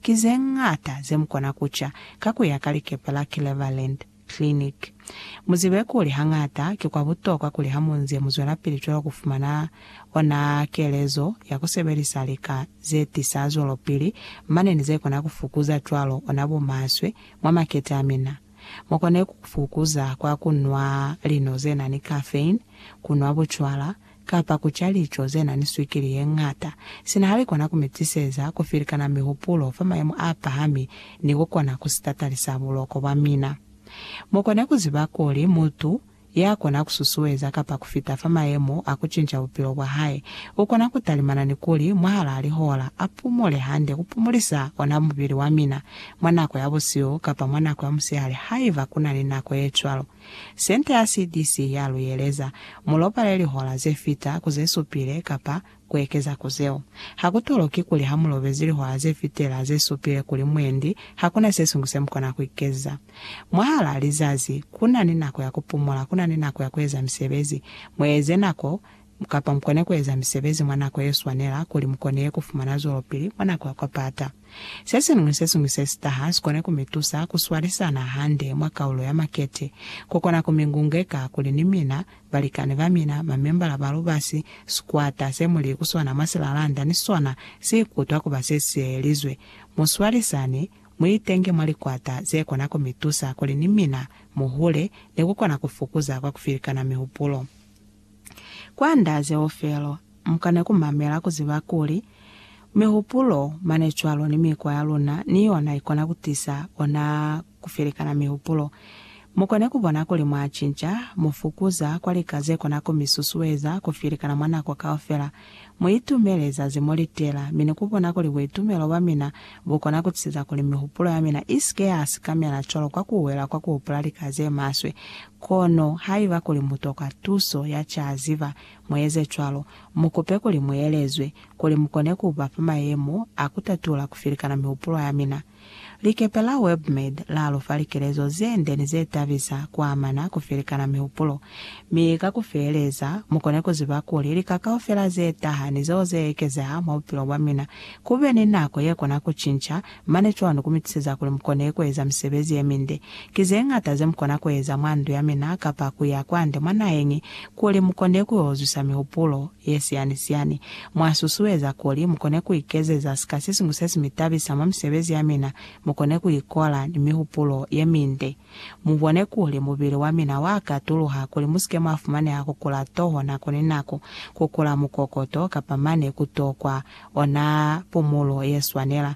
Ki ze ñata ze mu kona ku ca ka ku ya ka likepe la Cleveland Clinic. Mu zibe kuli hañata ki kwa butokwa kuli ha mu nze mu zwelapili cwalo ku fumana ona kelezo ya ku sebelisa lika ze tisa zwelopili mane ni ze kona ku fukuza cwalo ona bumaswe mwa makete a mina. Mu kone ku fukuza kwa ku nwa lino ze na ni caffeine, ku nwa bucwala, kapa ku ca lico ze na ni swikili ye ñata, sina ha li kona ku mi tiseza ku filikana mihupulo fa mayemo a pahami ni ku kona ku si tatalisa buloko bwa mina. Mu kone ku ziba kuli mutu ya kona ku susueza kapa ku fita fa mayemo a ku cinca bupilo bwa hae, u kona ku talimana ni kuli mwahalaa lihola a pumule hande ku pumulisa ona mubili wa mina, mwa nako ya busihu kapa mwa nako ya musihali haiba ku na ni nako ye cwalo. Sente ya CDC ya lu yeleza, Mu lobale lihola ze fita ku ze supile kapa ku ekeza ku zeo. Ha ku toloki kuli ha mu lobezi lihola ze fitela ze supile kuli mwendi ha ku na se siñwi se mu kona ku ikeza. Mwahalaa lizazi, ku na ni nako ya ku pumula, ku na ni nako ya ku eza misebezi. Mu eze nako Kapa mukone kueza misebezi mwa nako yeswanela kuli mukone kufumana zwelopili mwa nako ya kwapata. Sesiñwi ni sesiñwi sesitaha sikone kumitusa kuswalisana hande mwa kaulo ya makete, kukona kumingungeka kuli ni mina, balikani bamina, mamembala ba lubasi, sikwata semuli kusona mwa silalanda ni sona siikutwa kuba sesiyeyelizwe. Muswalisane, muitenge mwa likwata zekona kumitusa kuli ni mina muhule ni kukona kufukuza kwa kufilikana mihupulo. Kwanda zeo felo, mukane kumamela kuziba kuli mihupulo mane cwalo ni mikwa ya luna ni yona ikona kutisa ona kufelekana mihupulo. Mukone kubona kuli mwacinca, mufukuza kwa lika zekona kumisusueza kufelekana mwa nako kaufela, Mu itumele zazi mo li tela, mi ni ku bona kuli buitumelo bwa mina bu kona ku tisiza kuli mihupulo ya mina i si ke ya sikamela cwalo ka ku wela kwa ku hupula lika ze maswe. Kono haiba kuli mu tokwa tuso ya ca ziba, mu eze cwalo. Mu kupe kuli mu elezwe, kuli mu kone ku ba fa mayemo a ku tatula ku filikana mihupulo ya mina. Likepe la WebMed la lu fa likelezo ze nde ni ze tabisa ku amana ku felikana mihupulo. Mi ka ku feeleza, mu kone ku ziba kuli lika kaufela ze taha ni zeo ze ekezeha mwa bupilo bwa mina ku be ni nako ye kona ku cinca mane cwani ku mi tuseza kuli mu kone ku eza misebezi ye minde Ki zeñata zemukona kueza mwa ndu yamina kapa kuya kwande mwa naheñi kuli mukonde kuyozwisa mihupulo yesiyani-siyani. Mwasusueza kuli mukone kuikezeza sika sesiñwi sesimitabisa mwa misebezi yamina, mukone kuikola ni mihupulo yeminde. Mubone kuli mubili wamina waakatuluha kuli musike mwafumaneha kukula toho nako ni nako, kukula mukokoto, kapa mane kutokwa ona pumulo yeswanela.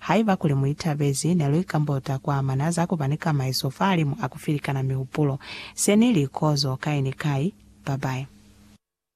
Haiba kuli mu itabezi, ne lu ikambota ku amana za ku ba ni kamaiso fahalimu a ku filikana mihupulo. Se ni li kozo kai ni kai. Babae.